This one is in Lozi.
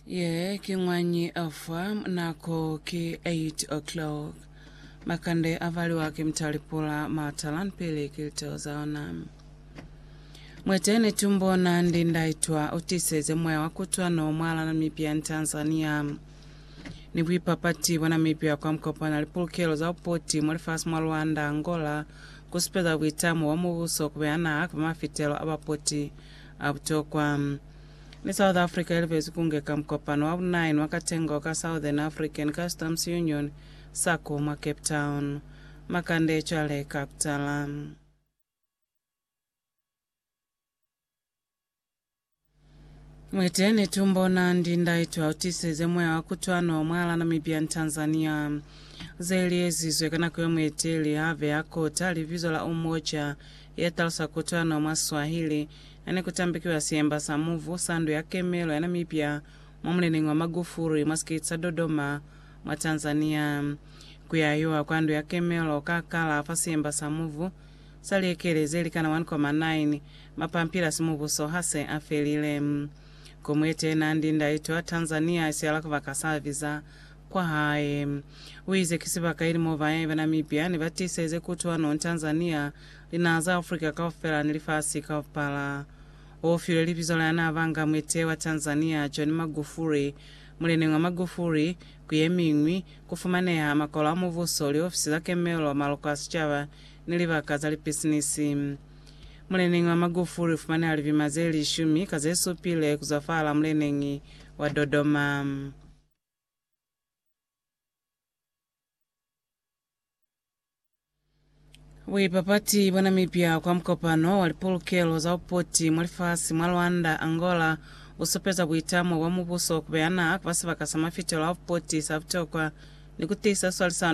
Ye ki ñwañi afwa nako ki 8 o'clock. Makande avaliwa ki mtalipula matalan pili ki liteo zaona. Mwete ni tumbona ndi ndaitwa utiseze moya wa kutwa no mwala Namibia ni Tanzania. Ni buipapati bwa Namibia kwa mkopana lipulukelo za upoti mwa lifasi mwa Rwanda, Angola, kusupeza buitamo bwa mubuso kubeha naha kaba mafitelo a bapoti a butokwa. Ni South Africa ilibezi kungeka mukopano wa bu-9 wa katengo ka Southern African Customs Union, SACU, mwa Cape Town. Makande cwale ka kutala. Muiteñi tumbona ndi ndaitu autisize moya wa kutwano mwala Namibia ni Tanzania. Zeli ezizwe ka nako ya mueteli have akota libizo la Umoja ya talusa kutwano mwa Swahili, ha ne ku tambikiwa siemba sa muvu sa ndu ya kemelo ya Namibia mwa muleneñi wa Magufuri mwa sikiti sa Dodoma mwa Tanzania. Ku yahiwa kwa ndu ya kemelo ka kala fa siemba sa muvu sa liekele ze likana 1,9 mapampila si mubuso ha se a felile. Komuete ye nandi ndaito ya Tanzania isiala kubaka sa biza kwa hae. U ize ki sibaka ili mo bayahi ba Namibia ne ba tiseze kutwano, Tanzania, linaha za Africa kaufela ni lifasi kaupala. U filwe libizo la ya n'a ba nga muetehi wa Tanzania, John Magufuli. Muleneñi wa Magufuli, ku ye miñwi, ku fumaneha makolo a mubuso, liofisi za kemelo, maloko a sicaba, ni libaka za lipisinisi. Muleneñi wa Magufuli u fumaneha libima ze lishumi ka ze supile ku zwa fahal'a muleneñi wa Dodoma. Buipapati bwa Namibia kwa mukopano wa lipolokelo za bupoti mwa lifasi mwa Luanda, Angola, busupeza buitamo bwa mubuso kubeha naha kuba sibaka sa mafitelo a bupoti sa butokwa ni kutiisa swalisano mwa Afrika.